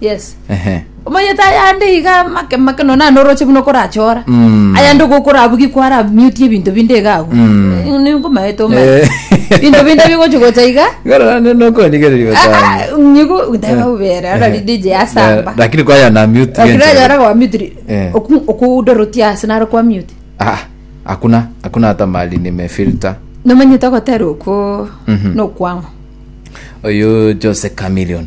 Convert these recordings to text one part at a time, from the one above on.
yes Ehe. omanyete ayande iga make make no nane oroche buna okorachora Mm. ayande ogokora abwo gikwa ara miuti ebinto binde iga agwo Mm. ninkomaete omanye Eh. binto binde bigochi gocha iga Gara ne no ko ni gere riba sana. nyigo ndaba ubera ara ni DJ asamba Lakini kwa ya na mute. lakini genje. ayara kwa mute Eh. okudorotia ase naro kwa mute Ah, hakuna hakuna hata mali nimefilter. nomanyete ogotera okwo Mhm. nokwang'o Oyo Jose Chameleon.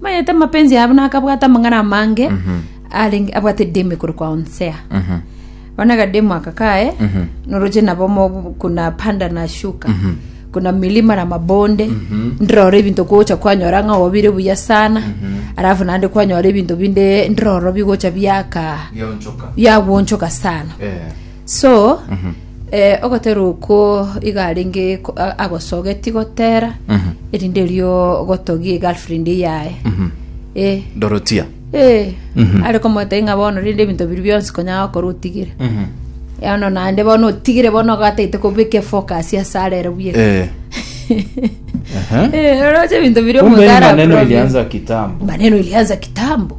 Mayete amapenzi yabo na akabwata amang'ana amange arenge abwate demu ekoro kwa onsea bana kademu aka kaye noroche nabo mo- kuna panda na shuka kuna milima na mabonde ndiroro ebinto kocha kwanyora ng'a obire buya sana alafu naende kwanyora ebinto binde ndiroro bigocha biaka Biaonchoka. biagwonchoka sana Eh. so Ogotera okwo iga arenge ko- a- agosogeti gotera, erinde erio gotogie egirlfriend yaye. Eh, dorotia eh, are komotebi ng'a bono rinde ebinto biria bionsi konya gokora otigire. Bono naende bono otigire bono ogataete kobeka efocus ase arere buya. Eh. Aha. Eh, oroche ebinto biria Kumbe ni omogara maneno aprobe. ilianza kitambo Maneno ilianza kitambo.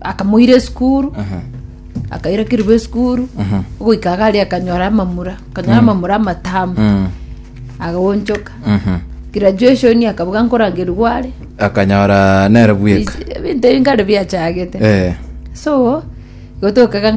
akamoira esukuru akaira kiribo esukuru ogoika gari akanyora amamura akanyora amamura amatamu Mm. agonchoka Mhm. graduation akabuga nkorangeru gware akanyora nere bweka ebinto ebi nkare biachagete Eh. so gotokaga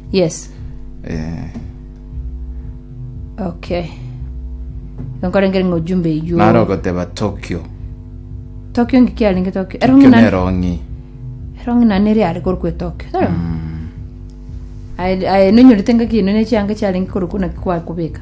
Yes. Eh, Okay. Nkorengere ng'a ujumbe eyuo. nare ogoteba tokyo Tokyo ngiki arenge Tokyo. tokyo Erongi nani? nerong'i Erongi nani eri ari koru kwe Tokyo. Tara. Aye aye nonyorete ngaki ino ne chianga chiarenge koru kuna kwa kubeka.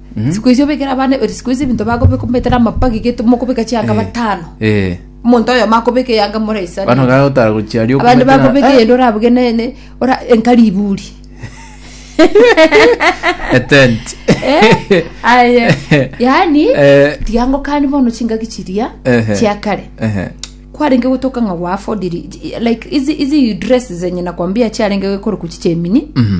siku icio obekere abana eri siku icio ebinto bakobeka omanyete na amapagi gete mokobeka chianga batano Eh. omonto oyomo akobeka eyanga Bano moraisana gae otara gochiaria abande okomete na- bakobeka Eh, eyende orabuge ne- ne- ora enka riburi a tent. Eh, aye yaani Eh. tiga ngokani bono chingaki chiria Ehe. chia kare Ehe. kwarenge gotoka ng'a gwaafodiri like izi izi dress zenye nakwambia chiarenge gokoroku chichemini Mhm.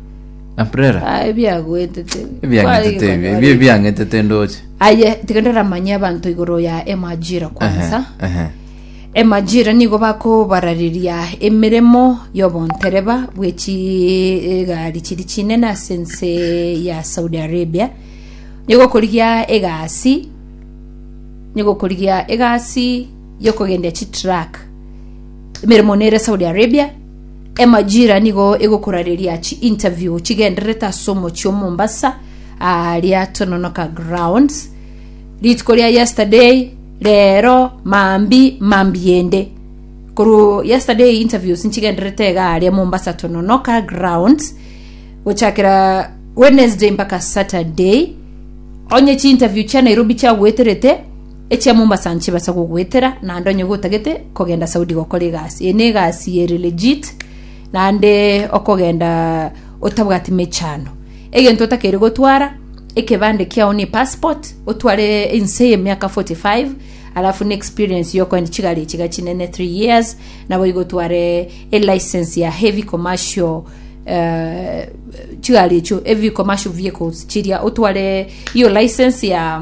na prera Ah, ebiagwetete. ebiang'etete ebi ebi ebiang'etete ndoche aye tiga ndaramanye abanto igoro ya emajira kwansa Ehe, ehe. emajira nigo bakobarareria emeremo y'obontereba bwe chigari chiri chinene ase ense ya saudi arabia nigo okorigia egasi nigo okorigia egasi yokogendia chitruck emeremo nere saudi arabia Emajira nigo egokorareria chi interview chigendererete ase omochie o Mombasa aa ria Tononoka Grounds rituko ria yesterday rero mambi mambi ende koru yesterday interviews nchigendererete iga aria Mombasa Tononoka Grounds gochakera Wednesday mpaka Saturday onye chi interview chia Nairobi chiagoeterete Echia Mombasa nchibasa gogoetera naende onye gotagete kogenda Saudi gokora egasi. Eye negasi ere legit naende okogenda otabwati mechando. Egento otakeire gotwara ekebande kiao ne passport otware inse ye miaka 45 alafu ne experience yokoenda chigari echiga chinene 3 years nabo igotware e license ya heavy commercial eh, chigari echo heavy commercial vehicles chiria otware iyo license ya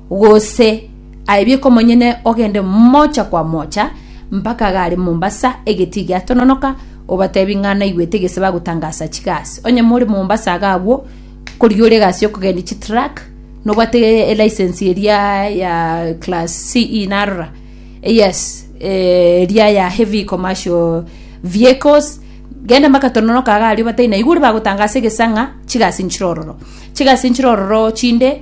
Gose aebie komonyene ogende mocha kwa mocha mpaka gare Mombasa egetii giatononoka obatebi ng'a naigwete gese bagotangasa chigasi. Onye more Mombasa iga agwo korigia ore egasi yokogendia chitruck nobwate elicense eria ya class CE narora yes eria ya heavy commercial vehicles gende mpaka tononoka iga aria obatebie naiga ore bagotangasa egesa ng'a chigasi nchire ororo. Chigasi nchire ororo chinde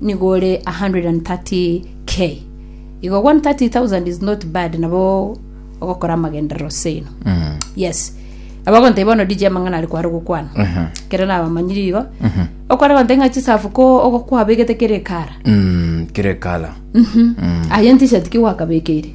nigo ore 130,000 K. Igo 130,000 is not bad nabo ogokora amagenderero seino. Yes. Abagonteba bono DJ amang'ana are kware gokwana. Aha. Kere nabamanyiri igo. Okware gonteba ng'a chisafu ko ogokwabegete kere ekara. Mm, kire kala. Aye ntisha tiki gwakabekeire.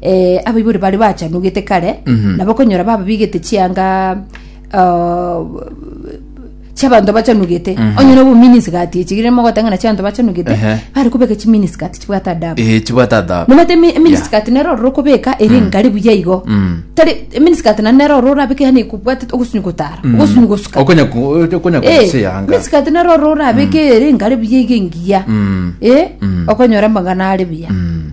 eh, abaibori bare bachanugete kare Mhm. nabo okonyora bababigete chianga ah, chiabanto bachanugete Mhm. onye nobo miniskati echigire mogotang'ana chiabanto bachanugete Ehe. bari kobeka chiminiskati chibwate adabu Eh, chibwate adabu nomete emi- eminiskati nero ororo okobeka ere engari buya igo Mm. tari eminiskati nane nero ororo orabeke yani ekobwate ogosunyi gotara Mm. ogosunyi gosuka Okonya ku- okonya Eh, kugusa eyanga. miniskati nero ororo orabeke ere engari buya igo engiya Mm. Eh, Mm. okonyora amang'ana are buya Mm.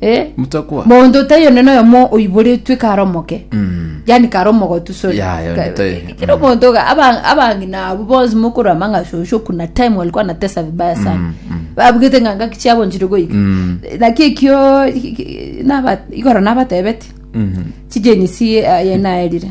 Eh, Mutakwa. monto taiyo nene oyomo oiboretwe kare omoke Mm. yani kare omogotu sorry Ya, ya, Ka- tai- ki- kira omonto ga- aba- abang'ina abo bonsi mokoro amang'a shosho kuna time walikuwa natesa vibaya sana Mm, mm. babugete ng'anga kichiabonchire goika Mm. naki ekio ki- ki- naba- igoro nabatebeti Mm. chijenisi yenaerire